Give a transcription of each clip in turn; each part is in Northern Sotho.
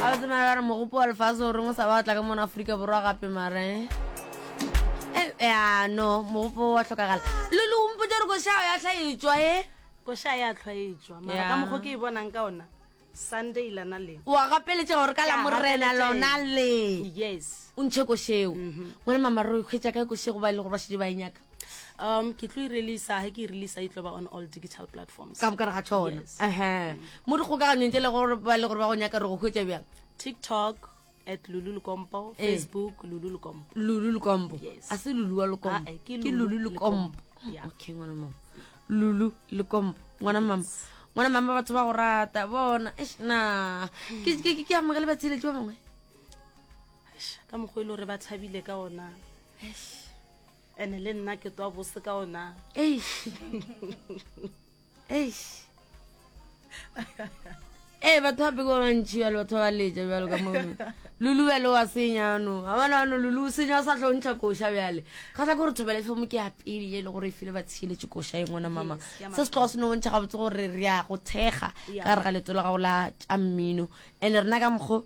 a o tsemara ba re mogopo wa lefase o reng o sa ba tla ka mona aforika borwa gape mare eh, ya no mogopo wa tlhokagala le le ompotse gore košao ya tlhaetswa e koša ya tlhwaetswa mara ka mokgo ke e bonang ka ona sunday lana le wa gapeletša gore ka la morena lona le yes o ntšhe košeo mhm. ngwana mamareo kgwetsa kae košego ba e le gore ba šedi ba e nyaka um ke tlo e releasa ga ke e releasa e tlo ba on all digital platforms ka bokare ga tšhona ehe mo dikgokaganyong tse le gore ba le gore ba go nyaka re go hwetsa bjang tiktok at lulu lukompo eh. facebook lulu lukompo lulu lukompo a se lulu wa lukompo ah, eh, ke lulu lukompo okay ngwana mama lulu lukompo ngwana mama ngwana mama batho ba go rata bona na ke amogele batsheletsi ba bangwe ka mokgwa e le gore ba tshabile ka ona ene le nna ke twa bose ka ona ee batho ba peko bantši bjalo batho ba leja bjalo ka mo lulu bjale wa senyano ga bona ano lulu o senya o sa tlontšha koša bjale ga sa gore thobele tlhomo ke apele e le gore e file ba tshieletse koša e ngwana mama se se tloga se no bontšha gabotse gore re ya go thekga ka re ga leto la gago la tša mmino and-e rena ka mokgo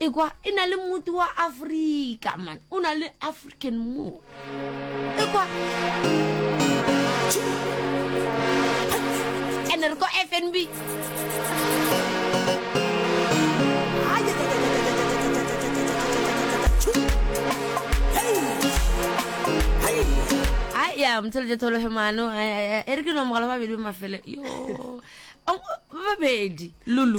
ekwa e na le motho wa afrika man o na le african mo ekwa ene re ko fnb ya mothelete thologe mano e re ke nomogala babedi ba mafele yo babedi lulu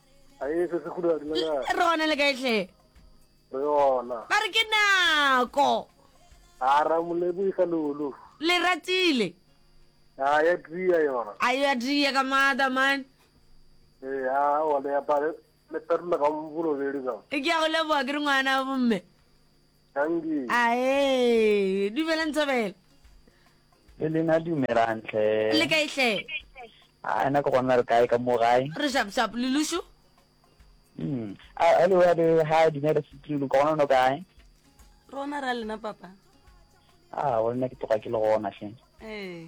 ae se se khuda di le kae re gona le kae hle re ona ba re ke nako a ra molebo isa lulu le ratile a ya tria yona a ya tria ka mada man eh a wa le apare le perla ka mvulo le le ka ke ya go leboga ke re ngwana bomme Angie. Ae, dumela Nthabela. Le lena dumelang tlhe. Le kae tlhe? A na ke gona re kae ka mo gae? Re shap shap le lushu. Mm. A hello ya be ha dumela sitri lu gona no kae? Rona ra lena papa. Ah, wena ke tloga ke le gona hle. Eh.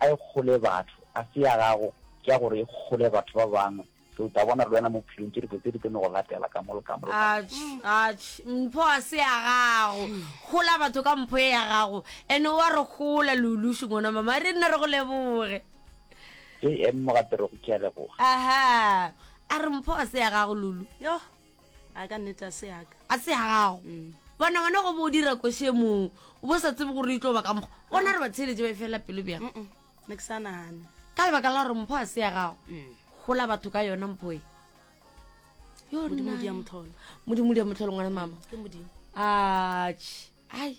A e kgole batho, a se ya gago, ke ya gore e kgole batho ba bangwe. So o tla bona le wena mo bophelong tše dibotse di tlo no go latela ka mo le ka mo le ka mo. Atšh, atšh, mpho a se ya gago. Kgola batho ka mpho ye ya gago. Ene o a re kgola, Lulush ngwana mama. Re nna re go leboge. JM Mogaperego, ke a leboga. Aha, a re mpho a se ya gago, Lulu. Yoh. a ka nnete a se yaka a se ya gago mm. bona wena go bo dira koshe moo o bo sa tsebe gore e tlo ba ka mokgwa gona re batheletše ba e fela pelo bjang ne ke sa nagane ka lebaka la gore mpho a se ya gago mm. gola batho ka yona mpho e modimo di ya motlholo ngwana mama a ai